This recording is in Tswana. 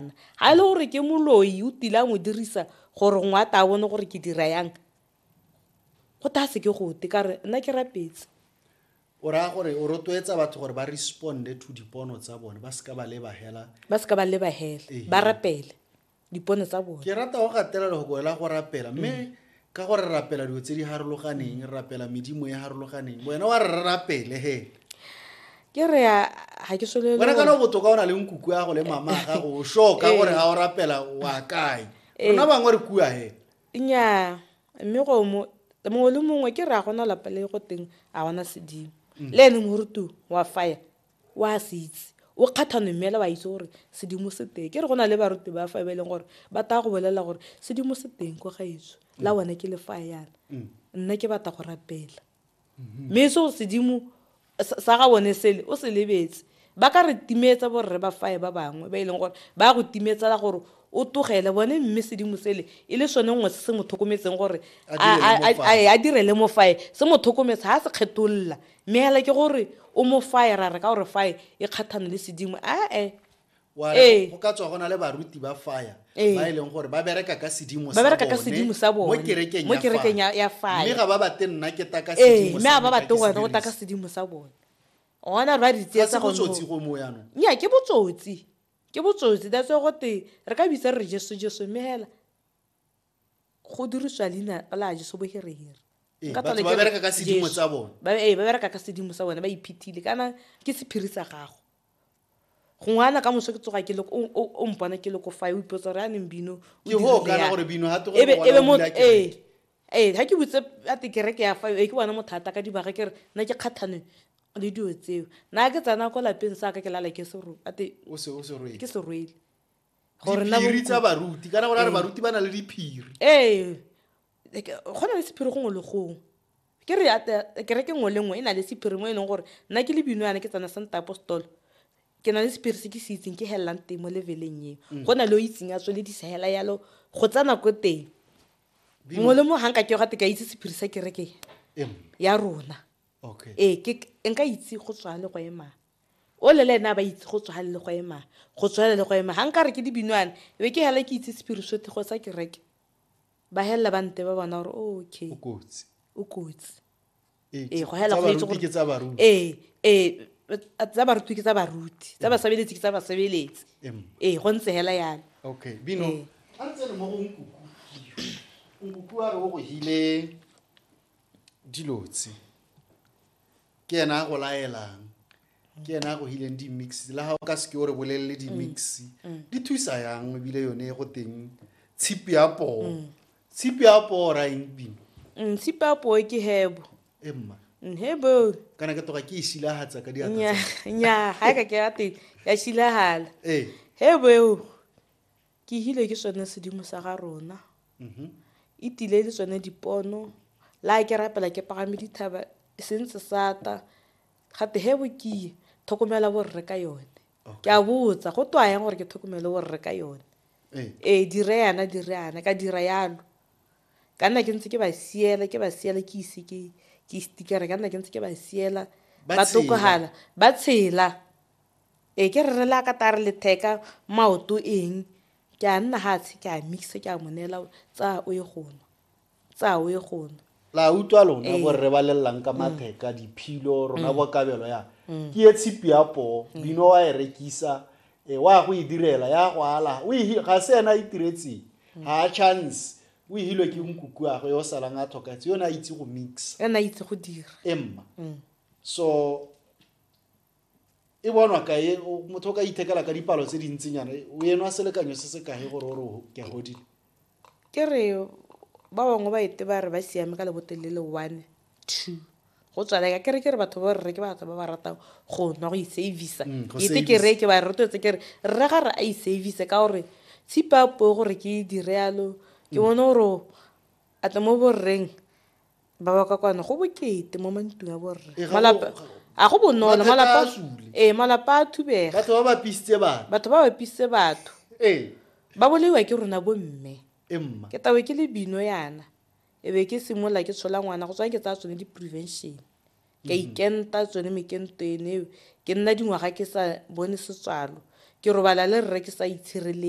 nna. Ga e le gore ke moloi o tile a mo dirisa gore ngwe a ta bone gore ke dira yang go ta se ke gote ka re nna ke rapetse o raya gore o rotloetsa batho gore ba responde to dipono tsa bone ba seka ba lebagela ba seka ba lebagela ba rapele dipono tsa bone ke rata go gatela le go boela go rapela mme mm. ka gore re rapela dilo tse di harologaneng re rapela medimo e harologaneng wena wa re rapele he ke re ga ke solele wena kana botoka o na le nkuku ya go le mama ga go sure ka gore ga o rapela wa kae eh. rona bangwe re kua he nnyaa mme go mo mongwe le mongwe ke re a gona lapa le go teng a gona sedimo mm. le ene morutu wa fire o a se itse o kgathano mme ela wa itse gore sedimo se teng ke re go na le baruti ba fa e ba e leng gore ba taya go bolelela gore sedimo se teng ko gaetso la mm. bone ke le fa yana mm. nna ke batla go rapela mm-hmm. mme e se go sedimo sa ga bone sele o se lebetse ba ka re timetsa borre ba fae ba bangwe ba e leng gore ba go timetsela gore o togele bone mme sedimo sele e le sone nngwe se se mo tlhokometseng gore a direle mo fae se mo tlhokometse ga se kgetolola mme hela ke gore o mo faye ra re ka gore faye e kgathane le sedimo ae wa re Ee. go ka tswa go na le baruti ba fire Ee. ba e leng gore ba bereka ka sedimo Ba bereka ka bone sedimo sa bone. mo kerekeng Mo ya kerekeng fire. ya- ya fire. mme ga ba bate nna ke taka ee sedimo mme sa a ba me, ga bate ke se wena o taka dirise. sedimo sa bone ona re ba re Ga se tsietsa go botsotsi go mo yanong nya ke botsotsi ke botsotsi that's why gote re ka bitsa re re jesu jesu mme hela go dirisiwa leina la jeso boherehire ee, ba bereka ka sedimo sa bone ba ee, bereka ka sedimo sa bone ba iphethile kana ke sephiri sa gago gongwe ana ka moso ke tsoga ke le o mpona ke le ko fa o ipotsa gore a neng bino ee ee ga ke botse a te kereke ya fa e ke bone mothata ka dibaga ke re nna ke kgathane le dilo tseo nna ke tsena ko lapeng sa ka ke lala ke seroke ke serwele gore na diphiri tsa baruti kana gore a re Ee. baruti ba na le diphiri ee like, go na le sephiri gongwe le gongwe ke re ata- kereke nngwe le nngwe e na le sephiri mo e leng gore nna ke le bino yana ke tsana santa apostolo ke na le sephiri se ke se itseng ke helelang teng mo leveleng eo Mm. go na le o itseng a tsweledisa hela yalo go tsa nako teng Bino- mongwe le mongwe ga nka ke gate ka itse sephiri sa kereke Em, ya rona okay ee ke nka itse go tswa le go emang o le le ene a ba itse go tswale le go ema go tswale le go ema ga nka re ke dibinwane be ke hela ke itse sepirisotego sa kereke ba helela ba nte ba bona gore okay o kotsi o kotsi ee go hela go itse gore tsa baruti ee ee tsa baruti ke tsa baruti tsa basebeletsi ke tsa basebeletsi ee go ntse hela yana okay bino a ntse le mo go nkuku nkuku a re o go hile dilotse ke ena a go laelang ke ena a go hileng di-mix le ga o ka seke o re bolelele di-mix mm. mm. di thusa yang ebile yone go teng tshipi ya poo mm. tshipi ya poo ra eng pino tshipi ya poo ke hebo emma hebo kana ke toga ke e shilagatsa ka diatnya ga e ka ke ya teng ya shilagala ee. hebo eo Ke hile ke sone sedimo sa ga rona. E tile le tsone dipono. La ke rapela ke pagame dithaba e se ntse sata. Gate he bo kiye thokomela borre ka yone. Ke a botsa go twa yang gore ke thokomele borre ka yone. Ee dire yana dire yana ka dira yalo. Ka nna ke ntse ke ba siela ke ba siela ke ise ke ke stikere ka nna ke ntse ke ba siela ba tokogala ba tshela. Ee, ke re re le a ka tare letheka maoto eng ke a nna ga tshe ke a mixe ke a mo neela tsaya o ye go nwa tsaya o ye go nwa la utlwa lona bo rre ba lelelang ka matheka diphilo rona bo kabelo ya ke ye tshipi ya poo bino wa e rekisa e wa go e direla ya go ala o e ga se ena e tiretseng ga a chance o e hilwe ke nkuku ya go yo salang a tlhokatse yone a itse go mix ena itse go dira emma so e bonwa kae motho o ka ithekela ka dipalo tse dintsinyana o enwa selekanyo se se kae gore o re ke a godile ke re ba bangwe ba ete ba re ba siame ka lebotelele one two go tswalega ke re ke re batho ba rre ke batho ba ba ratang go nwa go isavisa mm, ete ke re ke ba rotetse ke re rre ga re a isavise ka gore tshipa po gore ke dire yalo ke mm. bone gore a tle mo borreng Ba ba kwa kwano go bokete mo mantung a borre. Ee, ga Malapa go- a go bonolo Mathata malapa a sule. ee malapa a thubega batho ba ba pisitse bana batho ba bapisitse batho ee ba bolaiwa ke rona bomme e mma ke tawe ke le bino yana e be ke simolola ke tshola ngwana go tswa ke tsaya tsone di-prevention ka ikenta tsone mekento ene eo ke nna dingwaga ke sa bone setswalo ke robala le rre ke sa itshireletsa